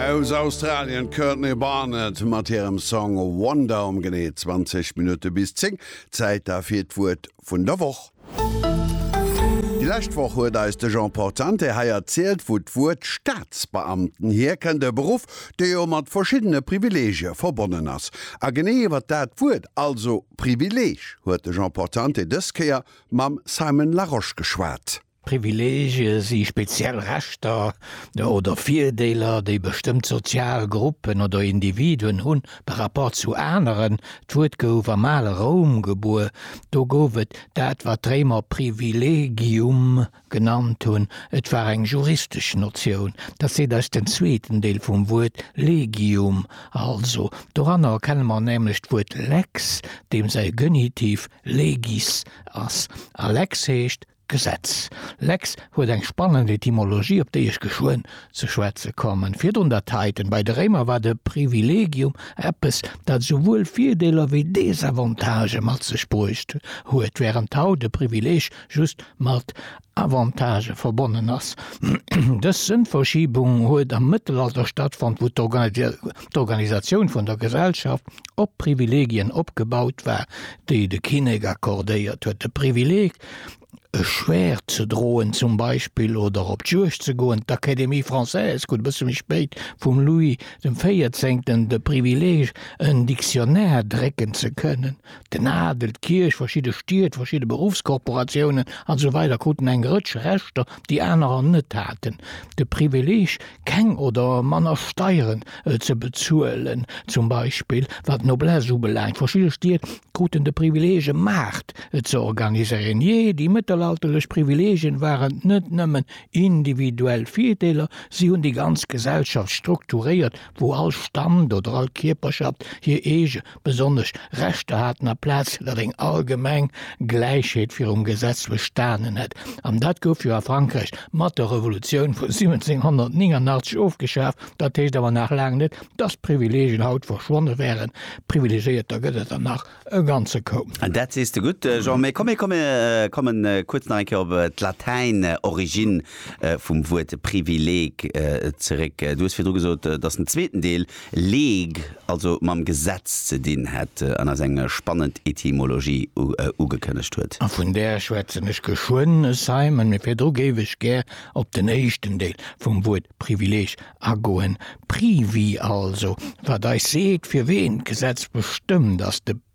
Aus Australien d'Courtney Barnett mat hirem Song Wonder um genee 20 Minutte bis 10. Zäit da fir d'Wuert vun der Woch. Déi lescht Woch huet eis de Jean Portante hei erzielt, wou d'Wuert Staatsbeamten hierkënnt, e Beruff, dee jo mat verschiddene Privileegie verbonnen ass. A genee iwwer dat Wuert, also Privileeg, huet de Jean Portante dës Kéier mam Simon Larosche geschwat. Privileegie si speziell Rechter oder Virdeeler, déi bestëmmt sozial Gruppen oder Individuen hu par rapport zu aneren. D'Wuert gouf am ale Roum gebuer. Do gouf et dat, wat d'Réimer privilegium genannt hunn. Et war eng juristesch Notioun. Dat seet eis den zweeten Deel vum Wuert legium. Also, doranner erkenne mer nämlech d'Wuert lex, deem säi Genitiv legis ass. A lex heescht Gesetz. Lex huet eng spannend Etymologie, op déi ech geschwënn ze schwätze kommen. Virdrun der Titan. Bei de Réimer war de Privilegium eppes, dat esouwuel Virdeeler wéi Desavantagë mat sech bruecht huet, wärend haut e Privileeg just mat Avantagë verbonnen ass. Dës Sënnverschiebung huet am Mëttelalter stattfonnt, wou d'Organisatioun vun der Gesellschaft op Privilegien opgebaut war, déi de Kinnek accordéiert huet. De Privileg e Schwäert ze droen zum Beispill oder op d'Juegd ze goen. D'Académie française krut e bësse méi spéit vum Louis dem Véierzéngten de Privileeg, en Dictionnaire drécken ze kënnen. Den Adel, d'Kierch, verschidde Stied, verschidde Beruffskorporatiounen, an esou weider kruten eng Rëtsch Rechter, déi anerer net haten. De Privileeg keng oder manner Steieren ze bezuelen, zum Beispill wat d'Noblesse ubelaangt. Verschidde Stied kruten de Privileeg e Maart ze organiséieren. Jee, déi mëttelalterlech Privileegien waren net nëmmen individuell Virdeeler, si hunn déi ganz Gesellschaft strukturéiert, wou all Stand oder all Kierperschaft hir eege besonnesch Rechter haten a Plaz dat eng allgemeng Gläichheet virum Gesetz bestanen hätt. An dat gouf jo a Frankräich mat der Revolutioun vu 1789 ofgeschaf. Dat heescht awer nach laang net, dass d'Privilegien haut verschwonne wären. Privilegéierter gëtt et der nach e ganze Koup. Dat sees de gutt, Jean. Mee komm, mir komme kuerz nach eng Kéier op d'Latäin Origine vum Wuert Privileg zeréck. Du hues virdru gesot, dass den zweeten Deel League, also mam Gesetz ze dinn hätt an eis eng spannend Etymologie ugekënnegt huet. A vun där schwätzen ech geschwënn, es sei men, mee virdru géif ech gär op den éischten Deel vum Wuert Privileeg agoen, Privi also, wat eis seet, fir ween d'Gesetz bestëmmt, ass de.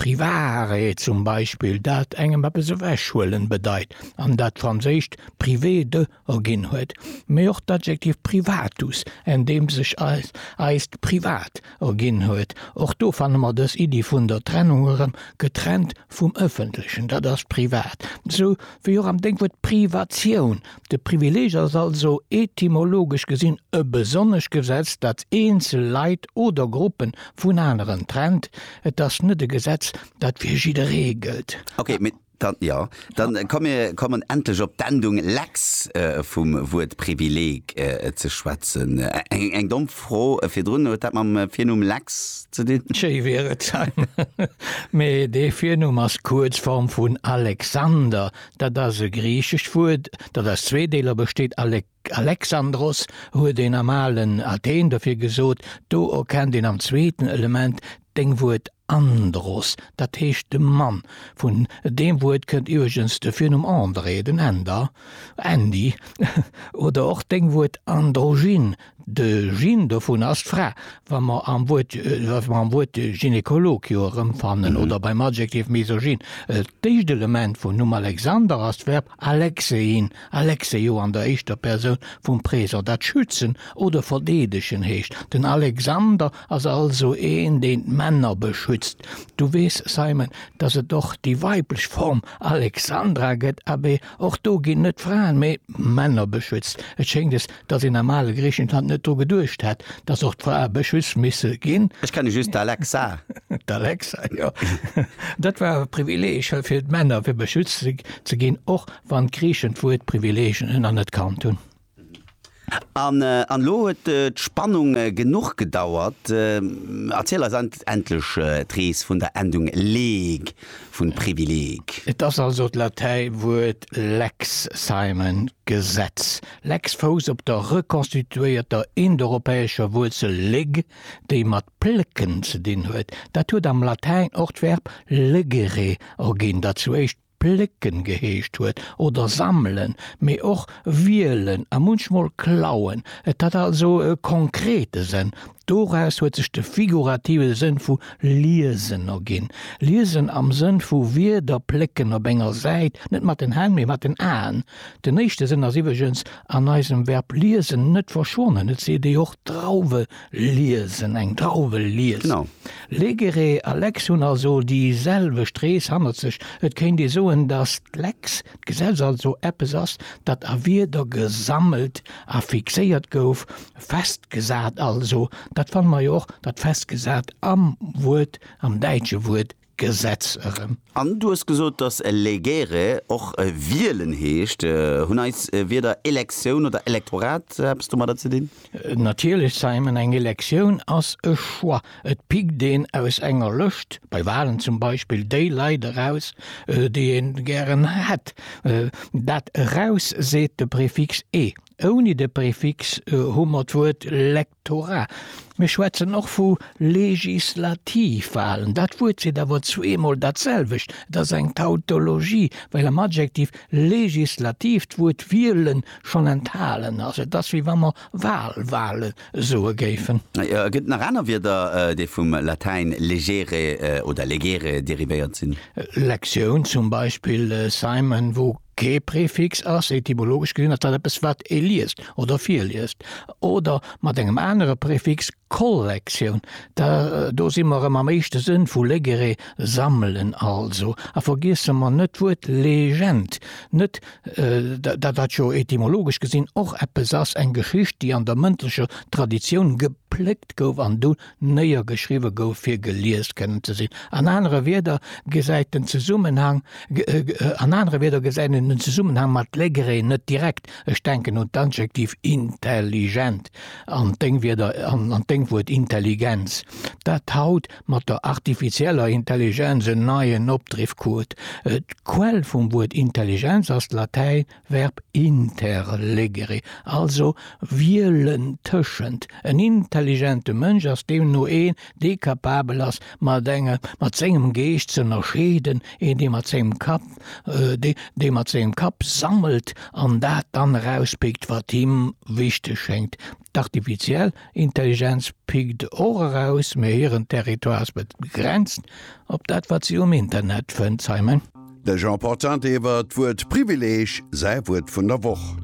Privaarrêt zum Beispill, dat engem eppes ewechhuelen bedeit an dat d'Franséischt privé de erginn huet, mee och d'Adjektiv privatus, en deem sech eis eist Privat erginn huet. Och do fanne mer dës Iddi vun der Trennung erëm, getrennt vum Ëffentlechen, dat ass privat, sou wéi och am Dénkwuert Privatioun, De Privileeg ass also etymologesch gesinn e besonnescht Gesetz, dat eenzel Leit oder Gruppe vun aneren trennt. Et ass net e Gesetz, dat fir jidderee gëllt. Ok, mee dann, jo, dann komm mir kommen endlech op d'Endung lex vum Wuert Privileeg ze schwätzen. Eng domm Fro virdrun, huet dat mam Virnumm Lex ze dinn? Schéi wier et, Simon, mee dee Virnumm ass d'Kuerzform vun Alexander, Dat ass e griichescht Wuert, dat aus zwee Deeler besteet, alek, alexandros huet een am alen Athen dofir gesot, do erkennt een am zweeten Element deng Wuert andros, dat heescht de Mann. Vun deem Wuert kënnt iwweregens de Virnumm André, den Änder, Andy, oder och deng Wuert androgyn, De Gin dovun ass d'Fra. Wa mer am Wuert, wa mer am Wuert Gynekolog jo erëmfannen oder beim Adjektiv misogyn. D'éischt Element vum Numm Alexander ass d'Verb alexein, alexeio an der éischter Persoun vum Présent, dat schützen oder verdeedegen heescht. Den Alexander ass also een, deen d'Männer beschützt. Du weess, Simon, dass et och déi weiblech Form Alexandra gëtt. Abee, och do ginn net d'Fraen, mee d'Männer beschützt. Et schéngt, es Dass een am ale Griichenland net dru geduecht hätt, dass och d'Frae Bëschüss misse ginn. Ech kenne just d'Alexa. D'Alexa, jo. Dat war awer e Privileeg fir d'Männer, fir beschützt ze ginn, och wann d'Griichen d'Wuert Privileeg anerkannt hunn. An elo huet d'Spannung genuch gedauert. Erziel eis endlech d'Rees vun der Endung leg vun Privileg. Et ass also d'Latäiwuert lex, Simon, Gesetz. Lex Fous op der rekonstituéierter indoeuropäescher Wuerzel leg, déi mat plécken ze dinn huet. Dat huet am Latäin och d'Verb legere erginn, dat zu éischt plécken geheescht huet, oder sammelen, mee och wielen a munchmol klauen. Et hat also e konkrete Sënn. Doraus huet sech de figurative Sënn vu liesen erginn, liesen am Sënn vu Wierder plécken op enger Säit, net mat den Hänn, mee mat den Aen. Den éischte Sënn ass iwweregens an eisem Verb liesen net verschwonnen, et seet ee jo och Drauwe liesen, eng Drauwe liest. Legere a Lex hunn also déi selwecht Rees hannert sech. Et kéint ee soen, datt d'Lex, d'Gesetz, also eppes ass, dat a Wierder gesammelt a fixéiert gouf, festgesat also. Dat fanne mer jo och, dat festgesat am Wuert, am däitsche Wuert Gesetz erëm. An du hues gesot, dass legere och wielen heescht. Hunn eis Wierder Elektioun oder Elektorat eppes domadder ze dinn? Natierlech, Simon. Eng Elektioun ass e Choix. Et pickt een aus enger Lëscht, bei Walen zum Beispill, déi Leit eraus, déi ee gären hätt. Dat eraus seet de Prefix e. Ouni de Prefix hu mer d'Wuert lek. Tora, Mir schwätzen och vu Legislativwahlen. Dat Wuert seet awer zweemol datselwecht. Et ass eng Tautologie, well am Adjektiv legislativ d'Wuert wielen schonn enthalen ass. Et ass, wéi wa mer Wahlwahle soe géifen. Et gëtt nach aner Wierder, déi vum Latäin legere oder legere derivéiert sinn. Lektioun zum Beispill, Simon, wou Kee Prefix ass, etymologesch gesinn, ass dat eppes, wat ee liest oder virliest, oder mat engem anere Prefix, Kollektioun, da do si mer erëm am éischte Sënn vu legere, sammelen also. A vergiesse mer net d'Wuert Legend net, dat dat jo etymologesch gesinn och eppes ass, eng Geschicht, déi an der mëndlecher Traditioun geplëckt gouf an du néiergeschriwwe gouf fir gelies kënnen ze sinn, an anere Wierder gesäit en Zesummenhang, an anere Wierder gesäit en den Zesummenhang mat Legree net direkt, ech denken un d'Adjektiv intelligent an d'Déngwierder, an d'Déngwuert Intelligenz, dat haut mat der artifizieller Intelligenz en neien Opdriff krut. D'Quell vum Wuert Intelligenz ass d'Latäin Verb interlegere, also wielen tëschent. En intelligente Mënsch ass deemno een, dee kapabel ass, mat engem, mat sengem Geescht z'ënnerscheeden, een, dee mat sengem Kapp, dee, dee mat sengem Kapp sammelt an dat dann erauspickt, wat him wichteg schéngt. D'Artifiziell Intelligenz pickt och eraus, mee hiren Territoire ass begrenzt op dat, wat si um Internet fënnt, Simon. De Jean Portante iwwer d'Wuert Privileeg, säi Wuert vun der Woch.